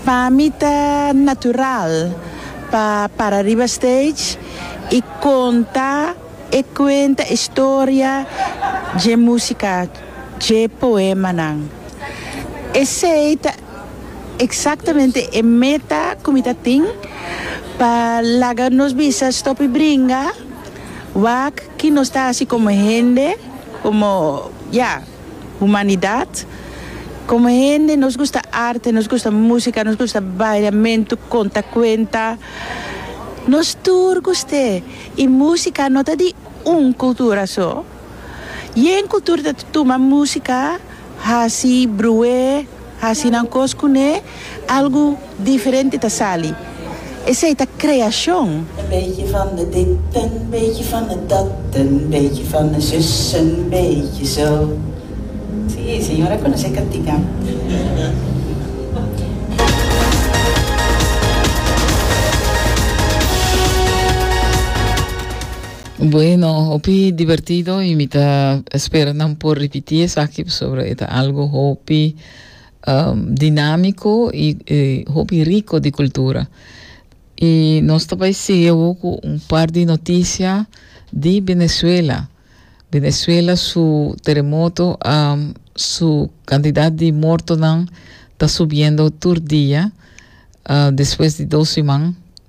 Pa mi ta natural pa para riba stage y conta e cuenta historia dje musica, dje poemanan. Esey ta exactamente e meta cu mi ta tin pa laga nos bisa stop y bringa wak ki nos ta haci como hende, como ya. Humanidad, Como hende nos gusta arte, nos gusta musica, nos gusta baila, mentu, conta cuenta. Nos tur gust'e y musica no ta di un cultura so. Yen cultura ta tuma musica haci bruh'e. Hasi nan kos kuné, algu diferente ta sali. Esei ta kreashon. Een beetje van de dit een beetje van de dat een beetje van de zus een beetje zo si señora conoce cantica Bueno, hopi divertido y mi ta espera nan por repiti esaki pasobra e ta algo hopi um, dinamico y e hopi rico di cultura. Y nos ta bai sigui awo cu un par di noticia di Venezuela. Venezuela su terremoto, um, su cantidad di mortonan ta subiendo tur dia, uh, despues di dos siman.